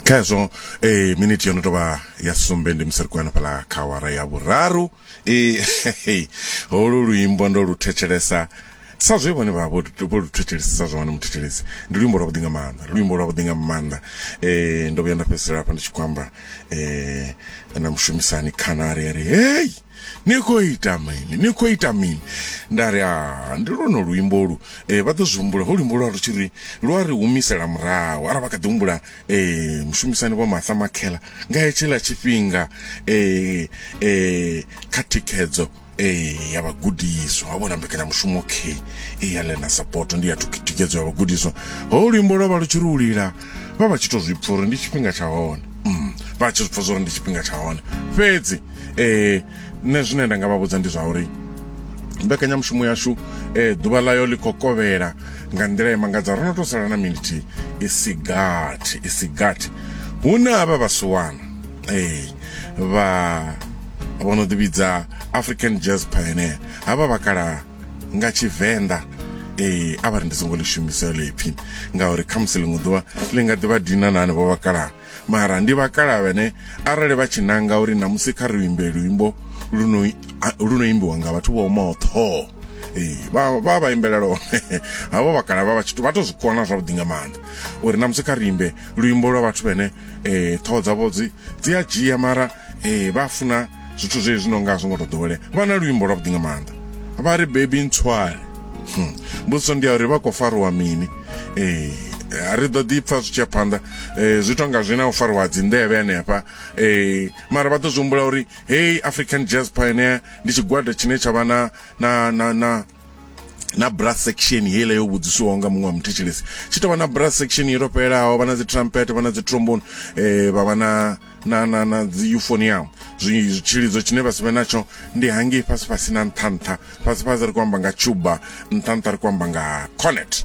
kha hezwo eh minute yo no tovha ya sumbe ndi musi ri khou ya fhala kha awara ya vhuraru eh holu luimbo ndo lu thetshelesa sa zwe vhone vha vho vho lu thetshelesa sa zwa wana muthetshelesi ndi luimbo lwa vhuḓi nga maanḓa luimbo lwa vhuḓi nga maanḓa eh ndo vhuya nda fhedzisela hafha ndi tshi khou amba eh na mushumisani khana ari ari hey Ni khou ita mini? Ni khou ita mini? Nda ri, Ah, ndi lwonolu luimbo lu. Eh, vha ḓo zwi humbula, ho luimbo lwa lu tshi ri, lu a ri humisela murahu. Ara vha kha ḓi humbula, eh, mushumisani Vho Martha Makhela, nga hetshiḽa tshifhinga, eh, eh, kha thikhedzo, eh, ya vhagudiswa, ho vhona mbekanyamushumo, okay, eh, ya Learner Support, ndi ya thikhedzo ya vhagudiswa. Ho luimbo lwa vha lu tshi ri u lila. vha vha tshi to zwipfa uri ndi tshifhinga tsha hone mm, vha tshi zwipfa zwori ndi tshifhinga tsha hone fhedzi eh nṋe zwine nda nga vha vhudza ndi zwa uri mbekanyamushumo yashu eh ḓuvha ḽayo ḽi khou kovhela nga nḓila ya mangadza ro no to sala na minithi i si gathi i si gathi hu na havha vhasiwana eh vha vho no ḓivhidza african jazz pioneer havha vhakalaha nga tshivenḓa ee a vha ri ndi songo ḽi shumisa ḽo ipfhi ngauri kha musi ḽiṅwe ḓuvha ḽi nga ḓi vha dina na hanevho vhakalaha mara ndi vhakalaha vhene arali vha tshi nanga uri namusi kha ri imbe luimbo lu no imbiwa nga vhathu vho omaho ṱhoho ee vha vha vha imbela lone havho vhakalaha vha vha tshithu vha to zwi kona zwavhuḓi nga maanḓa uri namusi kha ri imbe luimbo lwa vhathu vhene um ṱhoho dzavho dzi dzi a dzhia mara Ee, vha funa zwithu zwe zwi no nga zwi ngo to ḓowele vha na luimbo lwa vhuḓi nga maanḓa vha ri bebi ntswale hmm. mbudziso ndi ya uri vha khou fariwa mini ee ri ḓo ḓi pfa zwi tshi ya phanḓa um zwi tonga zwi na u fariwa dzinḓevhe hanefha um mara vha ḓo zwi humbula uri hei african jazz pioneer ndi tshigwada tshine tsha vha na na na na na brass section heiḽa yo vhudzisiwaho nga muṅwe wa muthetshelesi tshi tovha na brass section yo to fhelelaho vha na dzi trumpet vha na dzi trombone eh vha vha na na na na dzi euphonium tshilidzo tshine vha si vhe natsho ndi hangei fhasi fhasi na nṱha nṱha fhasi fhasi ri khou amba nga cuba nṱha nṱha ri khou amba nga cornet